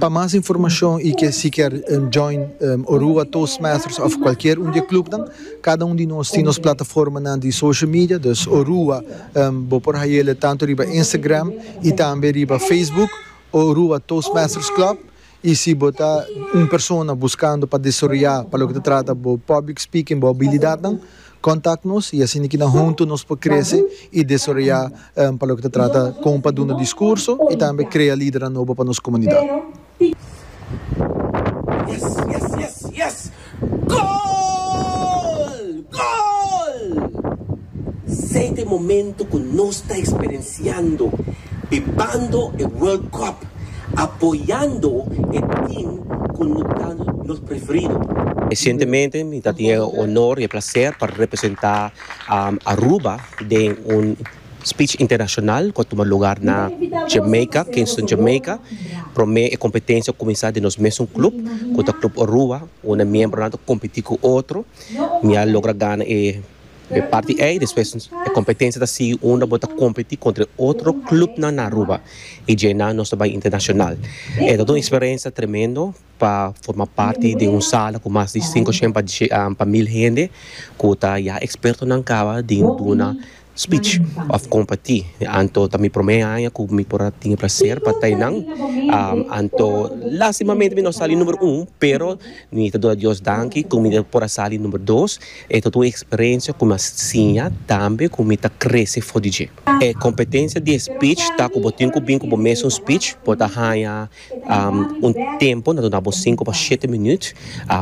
Pa mas informashon i ke si kier join Orua Toastmasters of kualkier un di e klupnan, kada un di nos tin nos plataformanan di social media, dus Orua bo por hayele tantu riba Instagram i tambe riba Facebook, Orua Toastmasters Club, i si bo ta un persona buskando pa desaroyá pa loke ta trata bo public speaking bo abilidatnan, Kontak nos i asina ki nan huntu nos por krese i desaroyá pa loke ta trata kon pa duna diskurso i tambe krea lidernan nobo pa nos komunidat. apoyando e team cu no ta nos preferido. Recientemente mi ta tin e honor y e placer pa representa Aruba den un speech internacional cu a tuma lugar na Jamaica, Kingston Jamaica. Prome e competencia a cuminsa den nos mesun club cu ta Club Orua, unda miembronan ta competi cu otro. Mi a logra gana e Dje parti ei, despues e kompetensia ta sigui unda bo ta kompetí kontra e otro klupnan na Aruba i dje nan nos ta bai internashonal. E ta ta un eksperensia tremendo pa forma parti den un sala ku mas di sinku shen pa mil hende ku ta ya ekspertonan kaba di duna spich òf kompetí. Anto ta mi promé aña ku mi por a tin e plaser pa ta einan anto lastimamente mi no a sali numero un pero mi ta duna Dios danki ku mi por a sali numero dos. E ta ta un eksperensia ku mi a siña tambe ku mi ta krese for di dje. E kompetensia di e spich ta ku bo tin ku bin ku bo mes un spich. Bo ta haña un tempu, nan ta duna bo sinku pa shete minüt.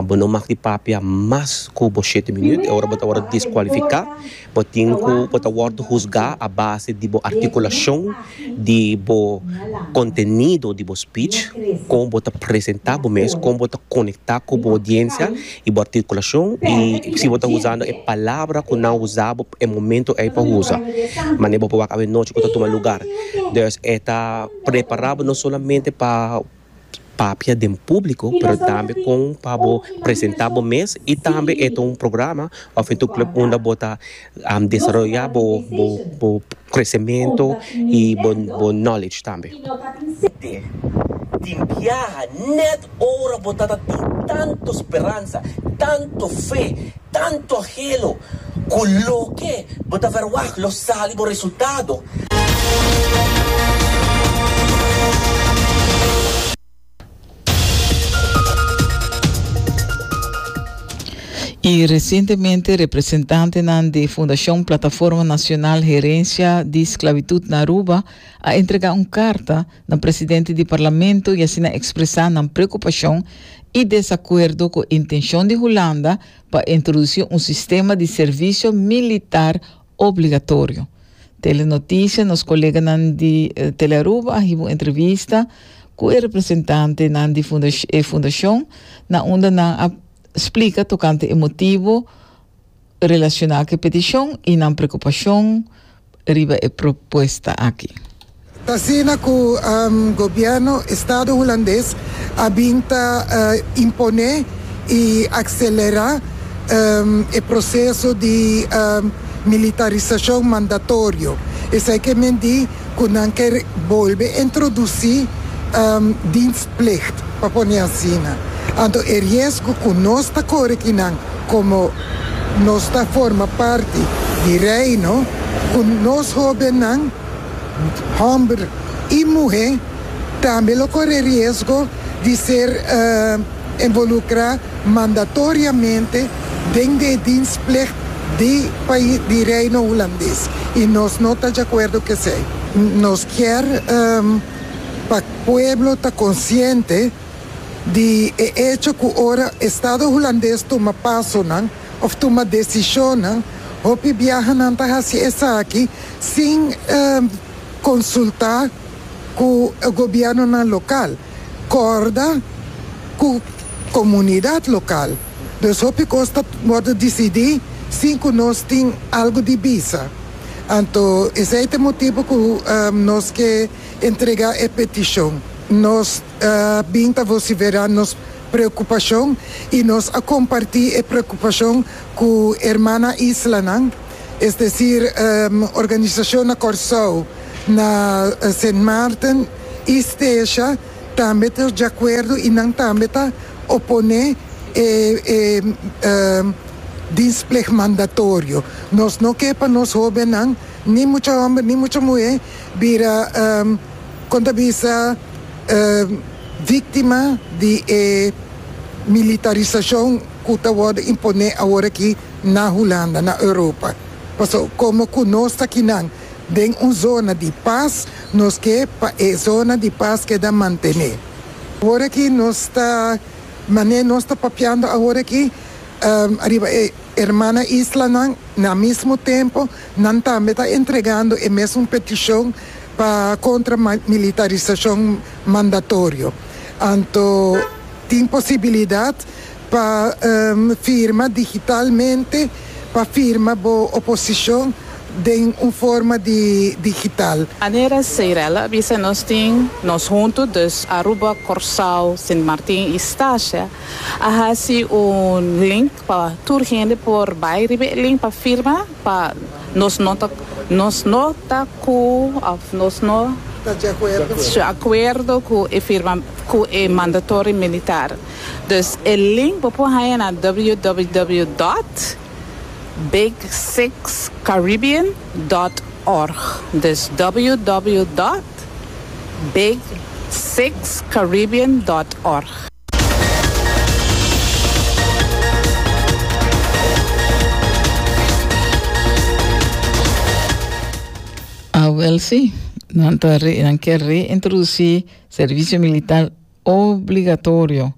Bo no mag di papia mas ku bo shete minüt. E ora bo ta wòrdu deskualifiká, bo tin ku bo ta wòrdu husgá a base di bo artikulashon, di bo kontenido di bo spich, kon bo ta presentá bo mes, kon bo ta konektá ku bo odiensia. y bo articulacion y si bo ta usando e palabra cu nan usa bo e momento ey pa usa mane bo pa wak awe nochi cu ta tuma lugar dus e ta prepara bo no solamente pa papia den publico pero tambe con pa bo presenta bo mes y tambe e ta un programa of e ta un club unda bo ta desaroyá bo bo kresementu i bo bo knowledge tambe. Tin biaha nèt ora bo ta ta tin tantu speransa, tantu fe, tantu anhelo ku loke bo ta verwagt lo sali bo resultado. Y recientemente representantenan di Fundacion Plataforma Nacional Herencia di Sclavitud na Aruba a entrega un carta na presidente di Parlamento y asina expresa nan preocupacion y desacuerdo cu intencion di Hulanda pa introduci un sistema di servicio militar Obligatorio. Telenotisia Nos koleganan di Telearuba a hiba un entrevista ku e representantenan di e fundashon na unda nan a splika tokante e motibu relashoná ku e petishon i nan preokupashon riba e propuesta aki. T'asina cu gobierno Estado Hulandes a bin ta impone y accelera e proceso di militarisacion mandatorio, esey ke men di cu nan ker bolbe introduci dienstplicht, pa pone asina. Anto e riesgo cu nos ta core aki nan, como nos ta forma parti di Reino, cu nos hobennan, Hòmber i muhé tambe lo kore riesgo di ser envolukrá mandatoriamente den di e dienstplig di pais di Reino Hulandes i nos no ta djakuerdo ku esei. Nos kier pa pueblo ta konsiente di e echo ku ora Estado Hulandes tuma pasonan, òf tuma desishonnan. Hopi biaha nan ta hasi esaki sin konsultá ku e gobièrnunan lokal, kòrda ku komunidat lokal. Dus hopi kos ta wòrdu disidí sin ku nos tin algu di bisa. Anto esei ta e motibu ku nos ke entregá e petishon. Nos bin ta vosiferá nos preocupacion y nos a comparti e preocupacion cu hermana islanan, es decir, organisacion na Corsou, na Sint Maarten y Stecia tambe ta diacuerdo y nan tambe ta opone e dienstplicht mandatorio. Nos no ke pa nos hobennan, ni mucha homber ni mucha muhe, bira. Kon ta bisa víktima di e militarisashon ku ta wòrdu imponé awor aki na Hulanda, na Europa? Paso komo ku nos ta kinan den un zona di pas, nos ke pa e zona di pas keda mantené. Awor aki nos ta, manera nos ta papiando awor aki ariba e Hermana Islanan, Na mismo tempo, nan tambe ta entregando e mesun peticion pa contra militarisacion mandatorio. Anto tin posibilidad pa firma digitalmente pa firma bo oposicion den un forma di digital. Anera Seirella a bisa nos tin nos hunto dus Aruba, Corsao, Sint Martin y Stasia a haci un link Pa tur hende por bai riba e link pa firma pa nos no ta nos no ta cu of nos no Ta djacuerdo. djacuerdo cu e firma cu e mandatory militar. Dus e link bo por haya na www dot big six caribbean dot org. Dus www dot big six caribbean dot org. A wel si, nan ta re, nan ker reintroducí servicio militar obligatorio.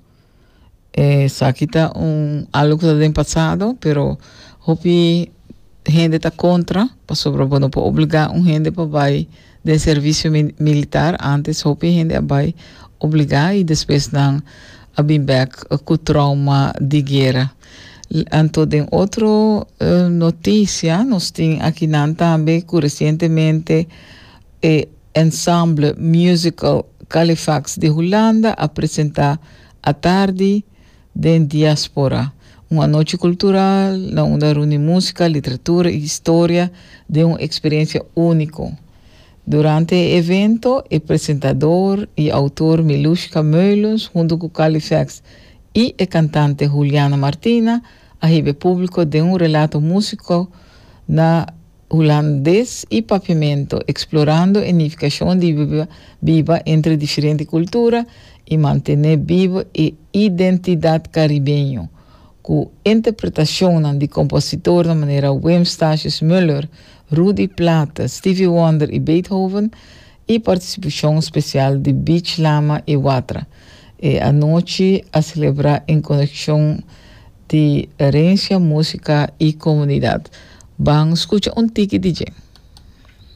Eh, sa kita un algo ku ta den pasado, pero hopi hende ta kontra pasobra bo no por obligá un hende pa bai den servisio militar. Ántes hopi hende a bai obligá i despues nan a bin bèk ku trouma di guera. Anto den otro notisia nos tin akinan tambe ku resientemente e ensemble musical Califax di Hulanda a presentá atardi Den diáspora, un anochi kultural na unda runi músika, literatura i historia den un eksperensia úniko. Durante e evento, e presentador i outor Milushka Meulens huntu ku Kali Feks i e kantante Juliana Martina a hiba e públiko den un relato músiko na Hulandes y Pavimento, explorando e nificacion di biba entre diferente cultura y mantene bivo e identidad caribeño, cu interpretacionnan di compositornan manera Wim Stasius Muller, Rudy Platte, Stevie Wonder y Beethoven y participacion special di Beach Lama y Watra. E anochi a celebra en conexion. di Herencia, Música y Comunidad. Ban scucha un tiki di dje.